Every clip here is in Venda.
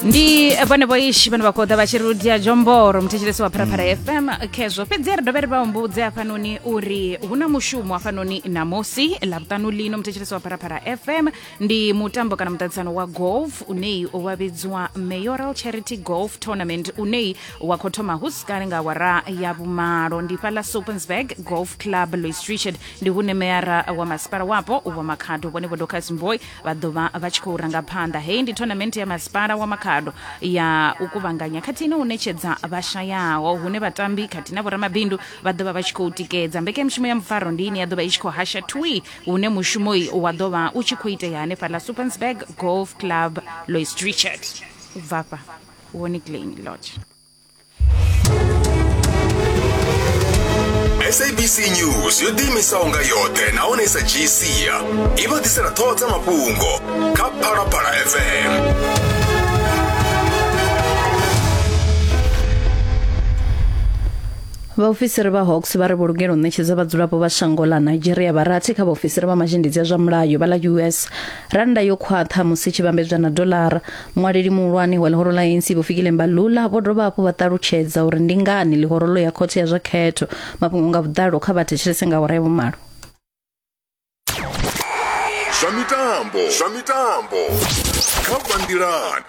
ndi vhone vhoishi vhane vha khou ḓa vha tshi ri ludia jomboro muthetshelesi wa pharapara fm khezwo fhedzi ri dovhe ri vha humbudze hafhanoni uri hu na mushumo hafhanoni namusi ḽavhuṱanu lino muthetshelesi wa pharapara fm ndi mutambo kana muṱaṱisano wa golf uneyi wa vhidziwa mayoral charity golf tournament uneyi wa khou thoma hu si kale nga awara ya vhumalo ndi fhaḽa supensburg golf club louis richard ndi hune meyara wa masipala wapo wa makhado vhone vho docas mboy vha ḓo vha vha tshi khou ranga phanḓa heyi ndi tournament ya masipala wa makhado ya u kuvhanganya khathihi na u ṋetshedza vhashayaho hune vhatambi khathihi na vhoramabindu vha ḓo vha vha tshi khou tikedza mbekanyamushumo ya mufaro ndi ine ya ḓo vha i tshi khou hasha twi hune mushumoi wa ḓo vha u tshi khou itea hanefhaḽa supernsburg golf club lois richard u bvafha woni glen lodge sabc news yo ḓiimisaho nga yoṱhe nahone sa dzhii sia i vha ḓisela ṱhoho dza mafhungo kha phalaphala fm vhaofisiri vha hawks vha ri vho lugela u ṋetshedza vhadzulapo vha shango ḽa nigeria vharathi kha vhaofisiri vha mazhendedzi a zwa mulayo vha ḽa us rannda yo khwaṱha musi tshi vhambedzwa na dolara muṅwaleli muhulwane wa ḽihoro ḽa anc vho fikile mbalula vho dovha hafhu vha ṱalutshedza uri ndi ngani ḽihoro ḽo ya khothe ya zwa khetho mafhungo nga vhuḓalo kha vha thetshelese nga awara ya vhumalo zwa mitambo zwa mitambo kha banngilani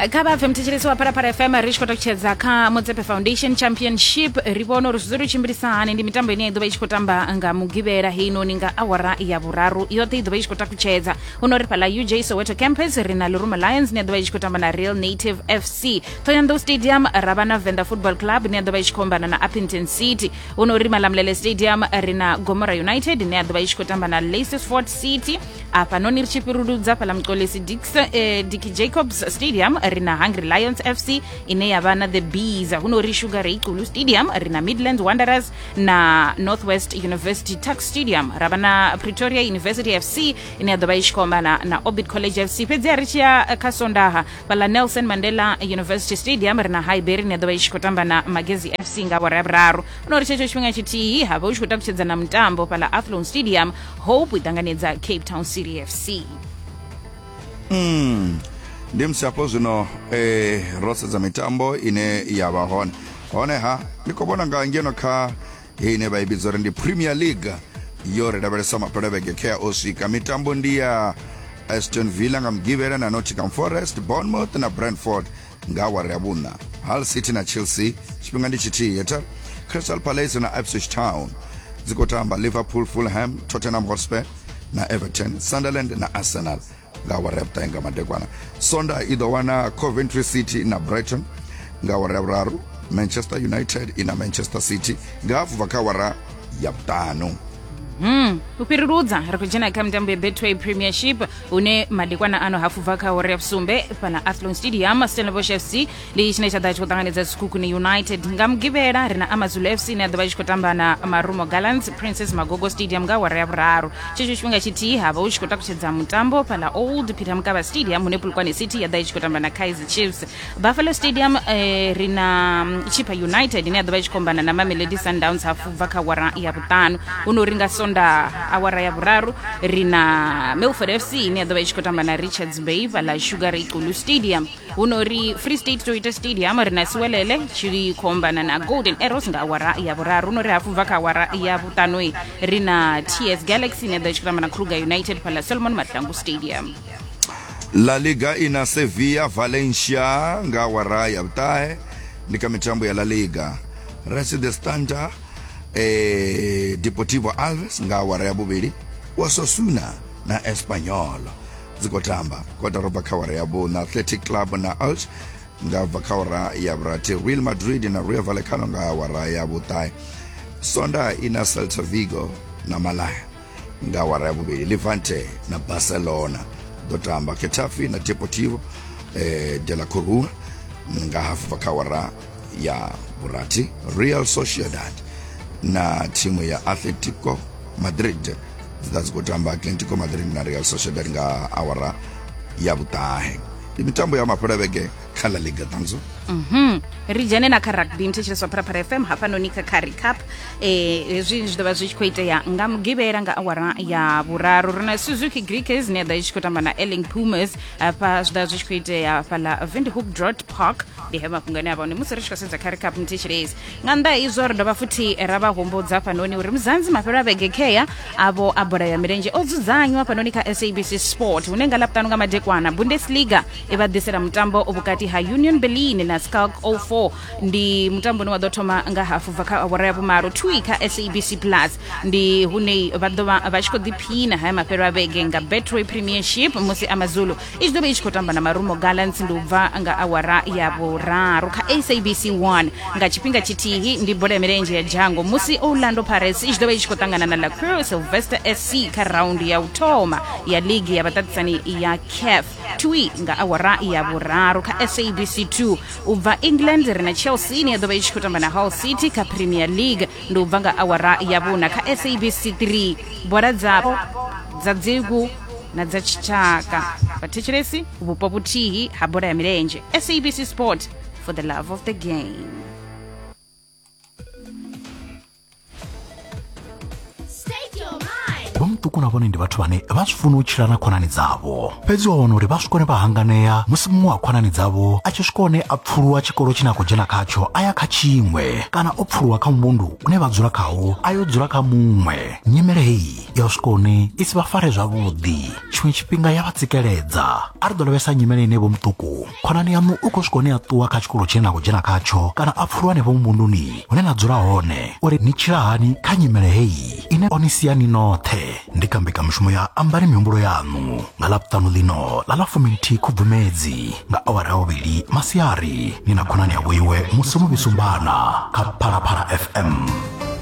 kha vha pfe mthetshelesi wa phalaphala fm ri tshi khou takutshedza kha motsepe foundation championship ri vhona uri zwi ḓo ri tshimbilisa hani ndi mitambo ine ya ḓovha i tshi khou tamba nga mugivhela heinoni nga awara ya vhuraru yoṱhe i ḓovha i tshi khou takutshedza huno ri fhala uj soweto campus ri na liruma lions ine ya ḓovha i tshi khou tamba na real native fc thoyandou stadium ra vha na venda football club ine ya ḓovha i tshi khou ombana na appington city hu no uri malamulele stadium ri na gomora united ine ya ḓovha i tshi khou tamba na lacesford city afhanoni ri tshi fhiruludza fhala muxolesi dix eh, dicky jacobs stadium ri na hungry lions fc ine ya vha na the bees hu no uri sugar ray culu stadium ri na midland wanderers na northwest university tax stadium ra vha na pretoria university fc ine ya ḓovha i tshi khou ombana na orbit college fc fhedzi a ri tshi ya eh, kha sondaha fhaḽa nelson mandela university stadium ri na highbury ni a ḓovha i tshi khou tamba na magezi fc nga awara ya vhuraru no ri tshetsho tshifhinga tshithihi ha vha u tshi khou takutshedza na mutambo fhaḽa athlone stadium hope i ṱanganedza cape town city fc mm. ndi musi hafho zwino eh, ro sedza mitambo ine ya vha hone honeha ni khou vhona nga ngeno kha hei ine vha i vhidza uri ndi premier league yo ri lavhelesa mapelavhege khe a o swika mitambo ndi ya aston villa nga mugivhela na nottingham forest bournemouth na brentford nga awara ya vhuṋa hull city na chelsea tshifhinga ndi tshithihi heta crystal palace na ipswich town dzi khou tamba liverpool fulham tottenham hotspur na everton sunderland na arsenal nga awara ya vhuṱahe nga madekwana sonda i ḓo wana coventry city na brighton nga awara ya vhuraru manchester united i na manchester city nga hafu bva kha awara ya vhuṱanu Hmm. u fhiruludza ri khou dzhena kha mitambo ya betway premiership une madekwana ano hafu bva kha awara ya vhusumbe fhana athlon stadium stellenbosch fc ndi tshine tsha ḓa tshi khou ṱanganedza tshikhukhuni united nga mugivhela ri na amazulu fc ine ya ḓovha i tshi khou tamba na marumo gallants princess magogo stadium nga awara ya vhuraru tshetsho tshifhinga tshithihi havha hu tshi khou takutshedza mutambo fhala old peter mukaba stadium hune pulukwane city ya ḓa i tshi khou tamba na kaizer chiefs buffalo stadium eh, ri na mm, chippa united ine ya ḓovha i tshi khou ombana na mamelodi sundowns hafu bva kha awara ya vhuṱanu huno ri nga sonda awara ya vhuraru ri na melford fc ine ya ḓovha i tshi khou tamba na richards bay fhala sugar ikulu stadium huno ri free state to ita stadium ri na siwelele tshi khombana na golden arrows nga awara ya vhuraru huno ri hafhu bva kha awara ya vhuṱanoi ri na ts galaxy ine ḓo tshikiramba na kruger united phala solomon mahlangu stadium la liga ina sevilla valencia nga awara ya vhuṱahe ndi kha mitambo ya la liga resi the standard eh, deportivo alves nga awara ya vhuvhili wasosuna na espanyol dzi khou tamba kotara u bva kha awara ya vhuṋa athletic club na alch nga bva kha awara ya vhurathi real madrid na royal vallecano nga awara ya vhuṱahe sonda i na celta vigo na malaya nga awara ya vhuvhili levante na barcelona ḓo tamba ketafe na deportivo eh, de la corua nga hafu bva kha awara ya vhurathi real sociedad na thimu ya atletico madrid dzi ḓa dzi khou tamba atletico madrid na real sociedad nga awara ya vhuṱahe ndi mitambo ya mafhela vhege kha la liga ṱanzo Mhm. ri dzhene na kha rugby mthetshelesi wa pharapara fm hafhanoni kha curry cup eh, hezwi zwi ḓovha zwi tshi khou itea nga mugivhela nga awara ya vhuraru ri na suzuki greekers ne ya ḓa i tshi khou tamba na elling pumas hafha zwi ḓovha zwi tshi khou itea fhala vindhoek drot park ndi he mafhungo ane a vha hone musi ri tshi khou sedza kha ri cup mthi tshilezi nga nnḓa ha izwo ri dovha futhi ra vha humbudza fhanoni uri muzanzi mafhelo a vhege khea avho a bola ya milenzhe o dzudzanywa fhanoni kha sabc sport hune nga laputano nga madekwana bundesliga i vha ḓisela mutambo vhukati ha union berlin na scalk 04 ndi mutambo une wa ḓo thoma nga hafu bva kha awara ya vhumalo twi kha sabc plus ndi hune vha ḓo vha vha tshi khou ḓiphina haya mafhelo a vhege nga betway premiership musi amazulu i tshi ḓo vha i tshi khou tamba na marumo gallants ndi u bva nga awara ya vhuraru kha sabc 1 nga tshifhinga tshithihi ndi bola ya milenzhe ya dzhango musi orlando pirates i tshi ḓo vha i tshi khou ṱangana na lacrow sylvester sc kha raundi ya u thoma ya ligi ya vhaṱaṱisani ya caf twi nga awara ya vhuraru kha sabc 2 u bva england ri na chelsea ine ya ḓo vha i tshi khou tamba na hull city kha premier league ndi u bva nga awara ya vhuna kha sabc 3 bola dzapo dza dzigu na dza tshitshaka vhathetshelesi vhupo vhuthihi ha bola ya milenzhe sabc sport for the love of the game vha muṱuku na vhone ndi vhathu vhane vha zwi funa u tshila na khonani dzavho fhedzi wa wana uri vha swikone vha hanganea musi muṅwe wa khonani dzavho a tshi swika hone a pfuluwa tshikolo tshine a khou dzhena khatsho a ya kha tshiṅwe kana o pfuluwa kha muvhundu une vha dzula khawo a yo dzula kha muṅwe nyimele heyi ya u swika hune i si vha fare zwavhuḓi tshiṅwe tshifhinga ya vha tsikeledza a ri ḓo lavhelesa nyimele ine vho muṱuku khonani yaṋu u khou swika hune a ṱuwa kha tshikolo tshine na khou dzhena khatsho kana a pfulwa henefho muvhunduni hune na dzula hone uri ni tshila hani kha nyimele heyi ine o ni sia ni noṱhe ndi kha mbekamishumo ya ambani mihumbulo yaṋu nga ḽa vhuṱanu ḽino ḽa ḽa fuminthihi khubvumedzi nga awara ya vhuvhili masiari ni na khonani ya vhoiwe musi muvhisumbana kha phalaphala fm